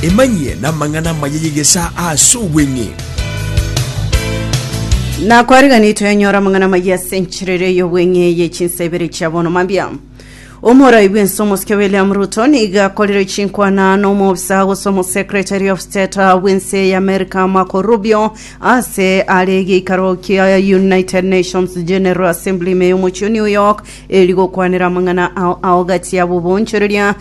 Emanyie namang'ana amaya y'egesaa ase obweng'e. Na kwarigani twenyora amang'ana maya ase enchirere y'obweng'e ye chinsa ibere chia bono mambia. Omorai bw'ense omosike William Ruto niga akorire chinkwana na omobisa gose omosekretari of state bw'ense ya America Marco Rubio ase are egeikaro kia United Nations General Assembly ime y'omochie o New York eri gokwanera amang'ana ao ao gati ya bobonchoreria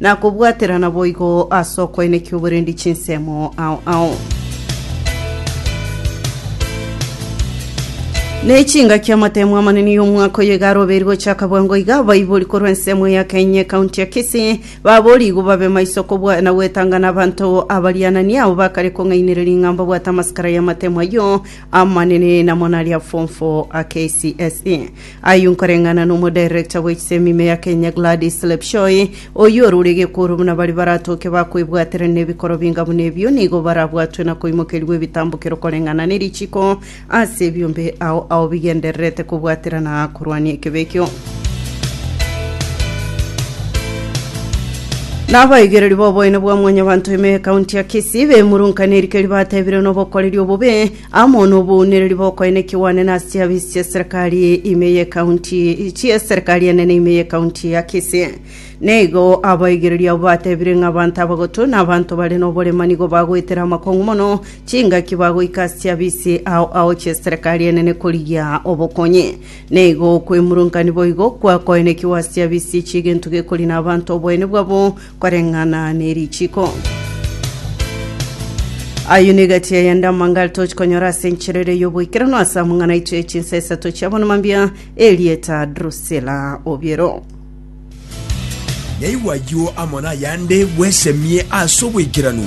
Na kobwaterana boigo ase okoenekia oborendi chinsemo ao ao. Ne chingaki amatemo amanene y'omwaka oyo iga aroberi gochaka bwango iga abaibori korwa ensemo ya Kenya ekaunti ya Kisii baborigwe babe maiso kobwa na gwetanga na abanto abarianani abo bakare kong'ainereria ing'amba bwate amasikara y'amatemo ayio amanene namo naria form 4 a KCSE Ayio nkoreng'ana n'omodirector bwe chisemi ime ya Kenya Gladys Lepchoi, oyio orure gekooro buna baria baratoke bakoebwatera nebikoro binga buna ebio nigo barabwatwe na koimokerigwa ebitambokero koreng'ana nerichiko ase ebiombe ao ao bigendererete kobwaterana korwania ekebe ekio. Nabaigereri b'oboene bwa mwanyabanto ime y'ekaunti ya Kisii bemurunka nerikeri batebire nobokoreri obobe amo nobounereri bokoene kigwanene ase chiafisi chi'eserikari ime y'ekaunti chi'eserikari enene ime y'ekaunti ya Kisii. Na igo abaigereria abwo batebire ng'a abanto abagotu na abanto bare noborema nigo bagoetera amakong'u mono chingaki bagoika ase chiafisi ao ao chi'eserikari enene korigia obokonyi. Na igo okwemurunka niboigo kwakoenekigwa ase chiafisi chi'egento gekori na abanto oboene bwabo Koreng'ana ne richiko. Ayio nigo egati ya yande amangare tochikonyora ase enchera ere y'oboikeranu ase amang'ana aito ya chinsa isato chia bono mambia erieta Drusila Obiero. Naigwa ayio amo nayande bwesemie ase oboikeranu.